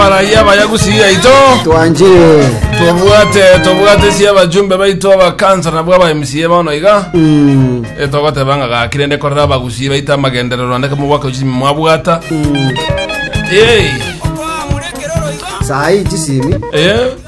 Barayi abayagusi yaito twanchire tobwate tobwate sia abajumbe baito abakansa nabwo aba MCA bono iga Mm, Eh, togoteba ng'a gaki rende korera abagusi baito amagenderero ande kamobwaka uchimi mwabwata mm. Yei. saai chisimi Eh,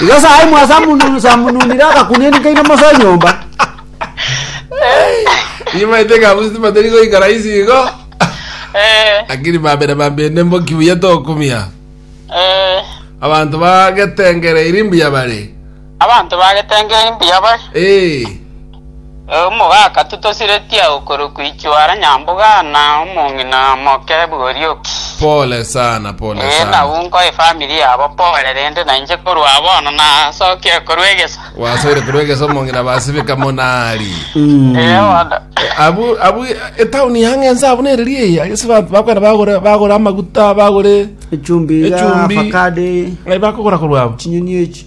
Nyasae mwasamununire agakunini kaino mose enyomba. Nimaete ng'a abwo tibatari goikara isi igo, lakini bambere bambende mboki buya tokumia. Abanto bagetengereiri mbuya bare. Abanto bagetengereria mbuya bare. Omogaka totosiretie agwo korokwa ichwara nyamboga na omong'ina omoke bw'Orioki. Pole sana, pole Ee, sana. nabwo nkoe efamiri yabo pole, rende nainche korwa bono nasokire korwa egesa. Wasoire korwa egesa omong'ina basibika monari. Ee, bono. Abu abu etauni yang'e ense abu nereri eye agese ba- bakwenda bagore bagore amaguta bagore Echumbi, Echumbi. avocado, Eh, bakogora korwa abo. chinyeni echi.